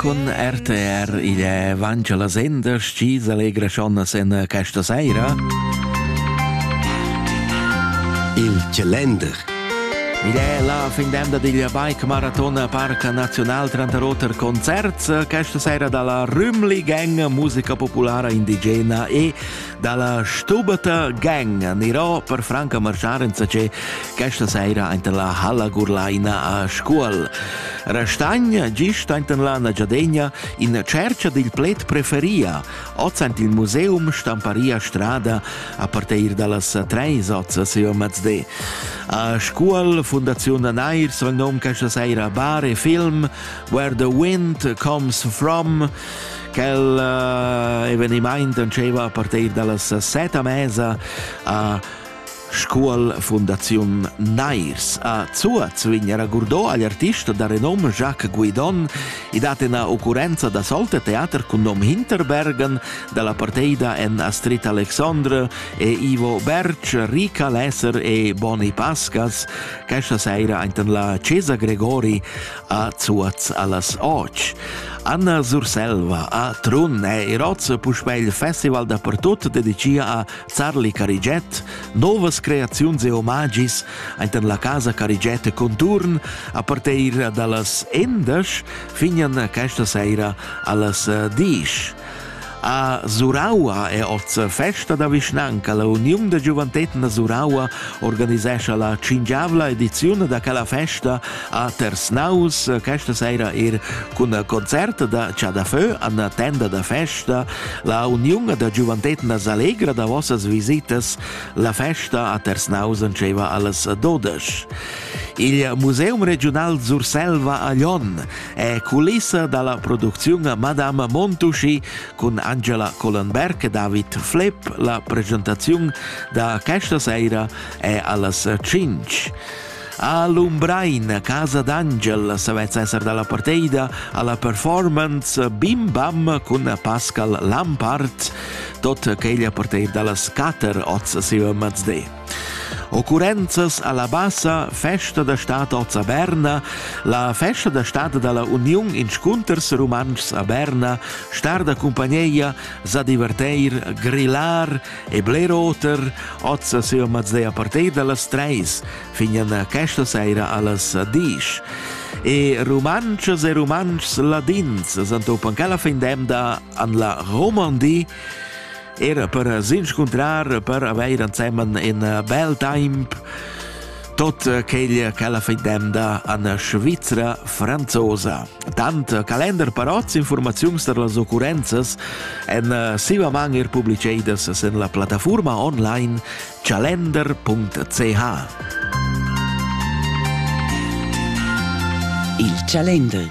Con RTR il è vangia la senda, sci s'allegra schon sen questa sera. Il Calender. Ed è la fin d'emda digl Bike Marathon Parc Nazional Trantaroter Concerts questa sera dalla Rümli Gang, musica populara indigena e Dalla stubata gang anirò per franca marschar insacé questa saira enten la halla Gurlaina a Scuol. Restagna gist enten la Nagiadegna in cerca dil pled preferia, oz ent il museum stamparia strada a parteir dallas treis oz a Seo Mazde. A Scuol, Fundaziun Nairs, vang nom questa saira bar e film Where the Wind Comes From, Quel uh, evenimaint entscheiva a partir dallas set a mesa a Scuol Fundaziun Nairs. A Zuaz vignera Gurdot agl artista da renom Jacques Guidon i dat ina occurrenza da solte teater cun nom Hinterbergen dalla parteida en Astrid Alexandre e Ivo Berg, Rica Lesser e Boni Pascas. Questa sera ainten la Cesa Gregori a Zuoz allas och. Anna Surselva a Trun eir hoz puspè il festival dapertut dedichia a Sarli Carigiet, novas creaziuns e omagis aint la casa Carigiet conturn a partir da las 11 finian questa seira allas 10. A Suraua è oz festa da vischnanca. La Uniun da giuventetna da Suraua organisescha la cingiavla ediziun da quella festa a Tersnaus, questa sera er cun concert da Chadafö an tenda da festa. La Uniun da giuventetna s'allegra da vossas visitas. La festa a Tersnaus dceva alles 12. Il Museum regional Surselva a Lyon è culissa dalla producziun a Madame Montuschi cun Angela Collenberg e David Flepp. La presentaziun da questa sera è allas 5. A Lumbrein, casa d'Angel, se vez esser dalla parteida alla performance Bim Bam cun Pascal Lampard, tot che gli parteid dallas 4 oz sive mezde. Occurrenzas alla bassa festa da stad oz a Berna, la festa da stad dalla Uniun Inscunters Rumantschs a Berna star da cumpagneia sa diverteir, grillar e bler oter oz a Seo Mazzea Partei dallas Treis fin a questa seira allas Disch. E Rumantschas e Rumantschs ladins san topan cala fin demda an la Romandie era per s'inscuntrar, per avere insieme in bel tempo tot quel che la fidemda an Svizzera franzosa. Tant Kalender parots informaziuns per las occurrenzas en siva man er publicedas sen la plattaforma online calender.ch Il Calender